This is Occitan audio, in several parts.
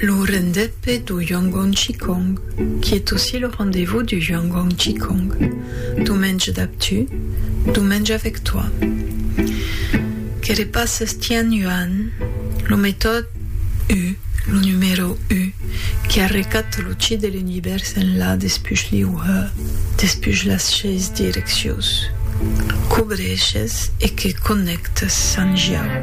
Lo rendez-pe du Yongguang Qigong, quiet aussi le rendez-vous du Yongguang Qigong, Dumenge dab tu, Dumenge avec toi, que repasses Tian Yuan, lo metòd u, lo numèro u, qui arrecat lo Qi de l'Univèrs enlà despuch l'iu he, despuch las seis direccions, cobreishes e que connèctes San Jiao.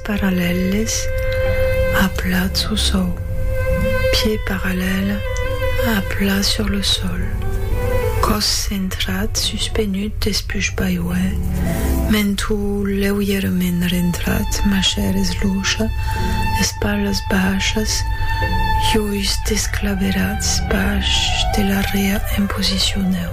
Parallèles à plat sous sou. Pieds parallèles à plat sur le sol. Còs centrat suspenut despuch baiuè, mentu leuièrament rentrat, machaires lucha, espalhas baishas, uis desclaverats baish de l'arrea en posicion neu.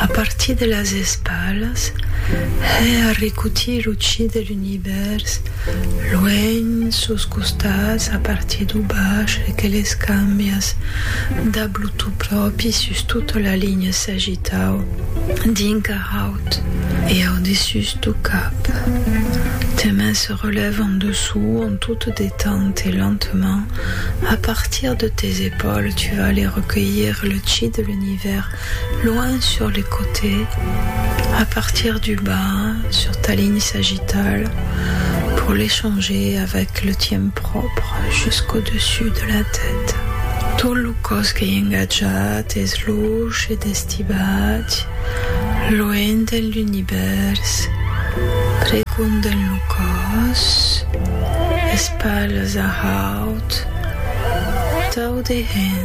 A partir de las espalas, hè arricutir lo chi de l'univèrs, luènh, sos costats, a partir d'o bach, hè que les cambias dab lo to pròpi sus tota la linha s'agitau dinc ar haut e au dessús d'o cap. Tes mains se relèvent en dessous en tot te détente et lentement, a partir de tes épaules, tu vas aller recueillir le chi de l'univèrs. L'ivèr, loin sur les côtés, à partir du bas, sur ta ligne sagittale, pour l'échanger avec le tien propre, jusqu'au dessus de la tête. Tot lo còs qu'ei engatjat es luch e destibat, loent d'en l'univèrs, pregond d'en lo còs, es palhs a haut, tau dehens.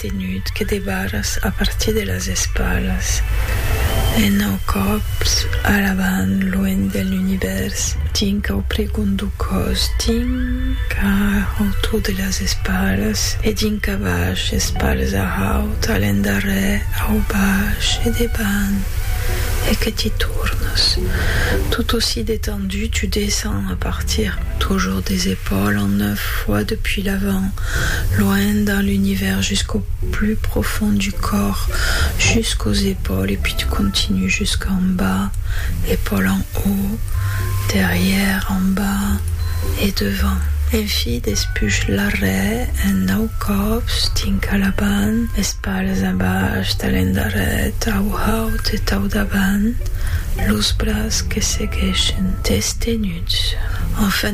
tenut que de barras a partir de las espalas e nau còps a l'avant luènh de l'univèrs tinc au pregon dau còs tinc a autour de las espalas e dinc a baish espalas a haut a l'endarrèr au baish e debant e que ti tornas tot aussi detendu tu descens a partir toujours des epaules en foi depuis l'avant, loin dans l'univers jusqu'au plus profond du corps, jusqu'aux épaules et puis tu continues jusqu'en bas, épaules en haut, derrière, en bas et devant. Enfi despuish l'arrèr un nau còps dinc a l'avant, espalhas a bash tà l'endarrèr, tau haut e tau davant, los bras que segueishen, destenuts, enfin,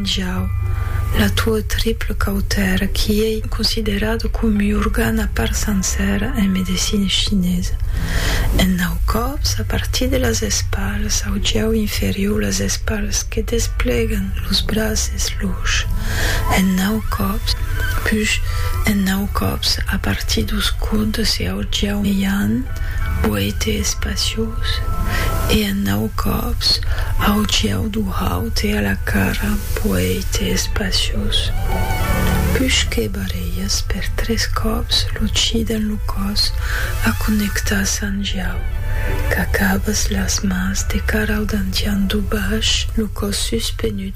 Jau, la tua triple cautèra qui ei considerada com ua organ a part sencèra en medecina chinesa. En nau còps, a partir de las espalas au jau inferior, las espalas que desplegan los braces luch, en nau còps, push, en nau còps a partir dos còdes e au jau meian, Poète espaciós e en nau còps auciau du haute a la cara Poète espaciós Pus que barrelhas per tres còps lo chi dens lo còs a connectar Sant Jau Qu'acabas las mans de cara au dantian du baish lo còs suspenut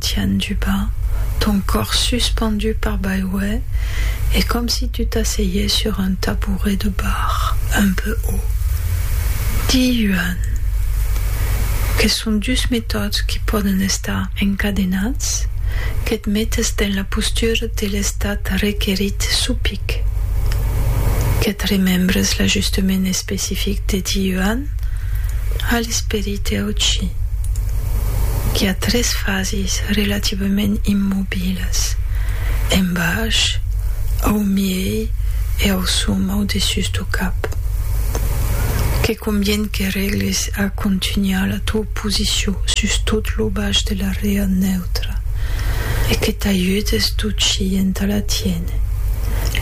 Tian du bas ton còr suspendu par baiuè e com si tu t'asseiè sur un tabouret de bar un peu haut. Di Yuan que son dus metòds qui pòden estar encadenats, que't metes dens la postura de l'estat requerit suu pic, que't remembres l'ajustement especific de Di Yuan a l'esperit, Teuci, qu'i a tres fases relativament immobilas, en baish, au miei e au som au dessús do cap, que convien que règles a contunhar la tua posicion sus tot lo baish de la rea neutra e que t'ajudes d'uci entà la tiéner.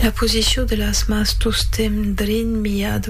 La posicion de las mans tostemp drin miat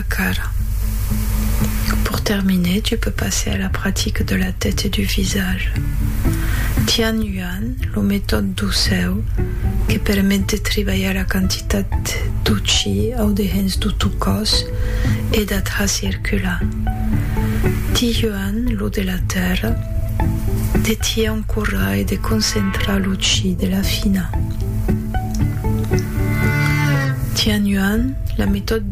la cara. Pour terminer, tu peux passer à la pratique de la tête et du visage. Tian Yuan, lo metòde d'ocèu que permet de tribalhar la quantitat d'U Chi au dehens d'U tu còs e d'atra circular. Ti Yuan, lo de la tèrra, de ti encorrar e de concentrar l'U Chi de la fina. Tian Yuan, la metòde.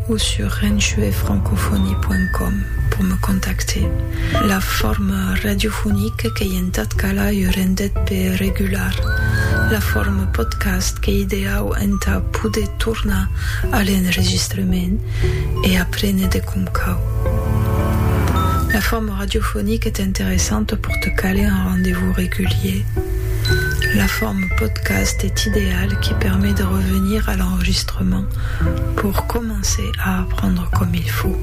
o sur renchuefrancophonie.com pour me contacter. La forme radiophonique qu'ei entat calar ua rendet pe regular la forme podcast qu'ei ideau entà poder tornar a l'enregistrement e aprene de com cau. La forme radiophonique est interessante pour te caler un rendez-vous régulier. La forme podcast est ideale qui permet de revenir à l'enregistrement. Roman pour comencer a apprendre comme il faut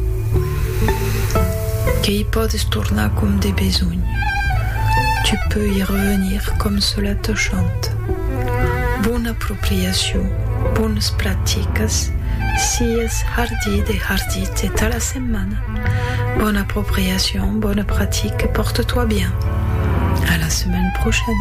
que i pòdes tornar comme de besonh, tu peux i revenir comme cela te chante. Bona apropriacion, bones practicas, sies hardit e hardit e ta la setmana! Bona apropriacion, bona pratique, porte-toi bien! A la semaine prochaine!